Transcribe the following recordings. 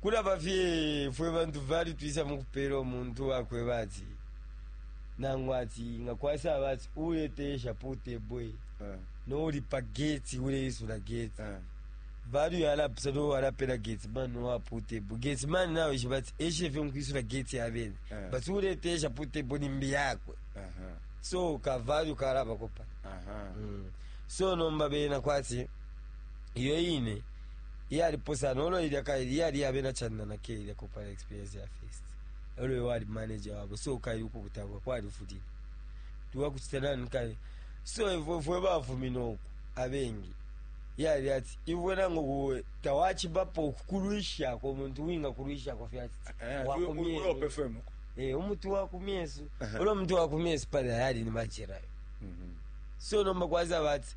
Kulaba fye fwe bantu vali twisa mukupela umuntu uwakweba ati nangu ati nga kwasaba ati uleteyesha po table eh. no uli pa gate uleisula gate eh. value yalapisa no walapela gate man no wapo table gate man nawe ishiba ati eshe fye nkwisula gate yabene eh. but uleteyesha po table nimbi yakwe uh -huh. so ka value kalaba kopa uh -huh. mm. so nomba bena kwati iyo ine Iyali pusana ulo ilya kaili yali ya bena China na ke ilya kopala experience ya first. Ulo ye wali manager wabo so kaili ukubutagwa kwali fulile. Tuwa kuchita nani kaili. So ifwe fwe bafumina uku abengi yali ati iwe nango kuwe tawachibapo okukulwisha ko muntu winga kulwisha ko fyati. Eh, wakumye. Ulo pefemo. Eh, umutu wakumyesu. Uh -huh. Ulo mutu wakumyesu pale yali ni machira. Mhm. Mm so nomba kwaza bati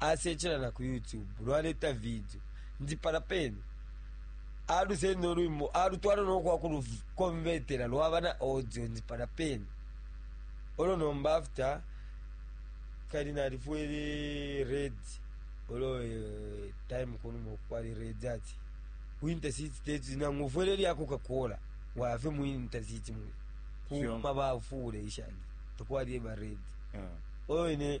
asecela na ku YouTube lwaleta vidio ndi palya pene alusenda ulwimbo alutwala no kwa kulukonvetela lwaba na audio ndi palya pene olo nomba after kali nalifwele red olo eh, time kunuma kwali red ati winter city teti nangu ufwele lya coca cola wafe mu winter city mwe Sure. kuma bafule ishani takwali eba red Yeah. olo ine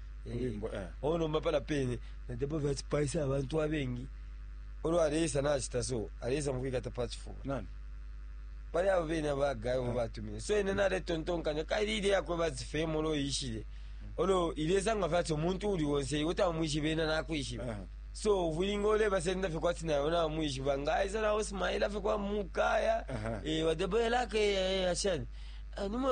inyimbo eh. o nomba pala pene nadebo vyacipaisa abantu abengi olo aleisa nacita so aleisa mukwikata pa cifuba nani pali abo bene abagayo ah. batumine so ene naletontonkanya kaili ile yakwe bazifemo olo yishile olo ilesanga fati omuntu uli wonse iwe tamwishiba ena nakwishiba ah. so uvulinga olebasenda fye kwati nayo namwishiba ngaisa nawo simaila fye kwa mukaya eh, wadeboyelake eh, ashani ah, nimwe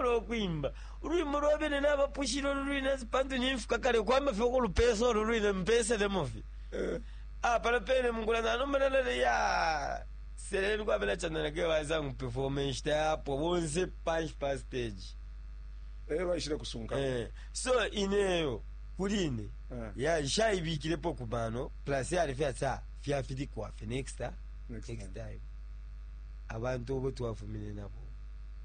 Ulo ukwimba ulwimbo lwa bene nabapushile ulu lwine ati pantu nimfika kale kwamba fye ukulupesa ulu lwine mpeselemo fye ah pala pene mukula nanomba nalale ya seleni kwa bena chandana ke baza nguperforma inshita yapo bonse panshi pa stage Eh, baishile kusunka eh so ineyo kuli ine Eh. ya nshaibikilepo ku mano plus yali fya tsa fya fili kwa fe next time Next next time abantu obo twafumine nabo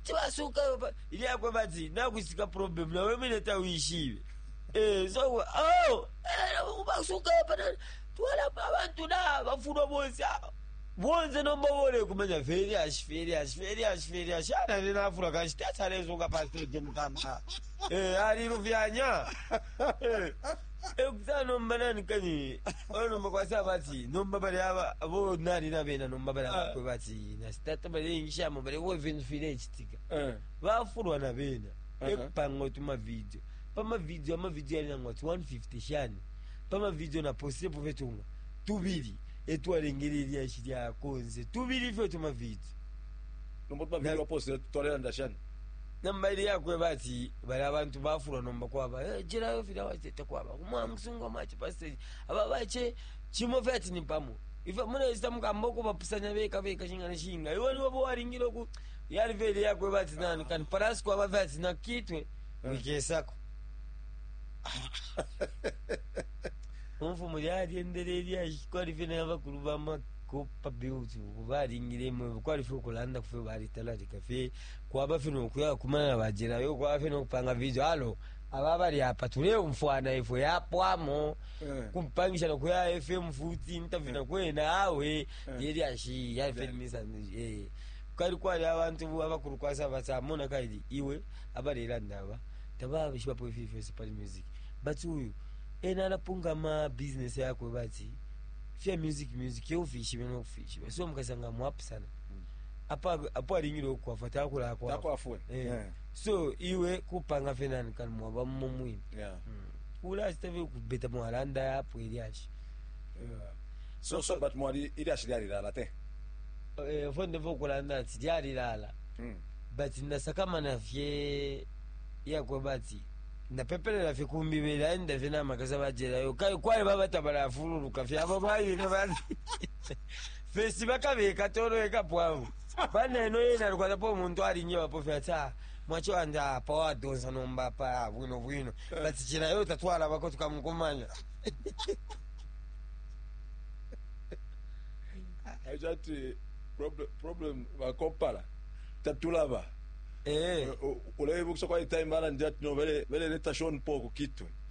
Kuti basuka baba ilyakwe bati nakwisika problem nawe mwine tawishibe. Eh so oh eh basuka baba twala abantu na bafuno bonse ah, bonse nomba bole kumenya very ash very ash very ash very ash ana nina afura kashi tatalezo ka pastor Jim Kamba. Eh ali rufyanya. Eh Ekuta nomba nani kani olo nomba kwasa bati nomba bali aba abo nani na bena nomba bali Ah. abakwe bati na sitata bali ingishamo bali wo vintu file chitika Eh. bafulwa na bena Aha. ekupanga utu mavidio pamavidio amavidio yali nangwa ti 150 shani pamavidio naposepo fetunga tubili etwalengele ilyashi lyakonze tubili fyo tumavidio Nomba tumavidio Na- waposele twalelanda shani? Nomba ili yakweba ati bali abantu bafulwa nomba kwaba eh, jelayo filya wache takwaba umwa musungu amache pa stage aba bache chimo fya ati ni pamo ifa mune isita mukamba uko bapusanya beka beka shingana shinga iwe niwe bo waringiro ku yali veli yakweba ati nani kan paras kwaba fya ati nakitwe wikesako umfu muri aryendere ilya kwari vina yabakuru bama kopa beauty baringire mwe kwari fyo kulanda kufyo bari talarika fye kwaba fye no kuya kumana na ba Jela yo kwaba fye no kupanga video alo aba bali apa tuleumfwana ifwe yapwamo Eh. kumpangisha no kuya FM futi interview na kwena awe yeli ashi ya FM misa eh kali kwali abantu bu- abakulu kwasa basamona kali iwe abalelanda aba tababishiba po ifi fyose pali music but uyu ena anapungama business yakwe bati fya music music yeufishibe nokufishiba so mukasanga mwapu sana apo alingile ukwafwa takwafwe eh. yeah. so iwe kupanga fye nani kani mwaba mumo mwine yeah. mm. ulasita fye kubeta mwalanda yapo ilyashi yeah. so, so but mwali ilyashi lyalilala te eh, fo ndefo ukulanda ati lyalilala mm. but nasakamana fye yakweba ati ndapepelela fye kumbi belaenda fye namakasa bajelayo kwali babatabala afululuka fye abo bayine bati First bakabekata olo ekapo abo pa neno yena alikwatapo umuntu alinjebapo fye ati ah mwachi wandi ah pa wadonsa nomba apa ah, bwino bwino but chila yo tatwalabako tukamukumanya acho ati problem, problem bakopala tatulaba eh uleibukisha kwa time bala ndi ati no bele bele leta Sean Paul ku kitwe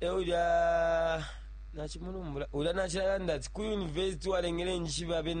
e ulya nacimulumbula ulya nacilalanda ati ku university walengele njishibe abena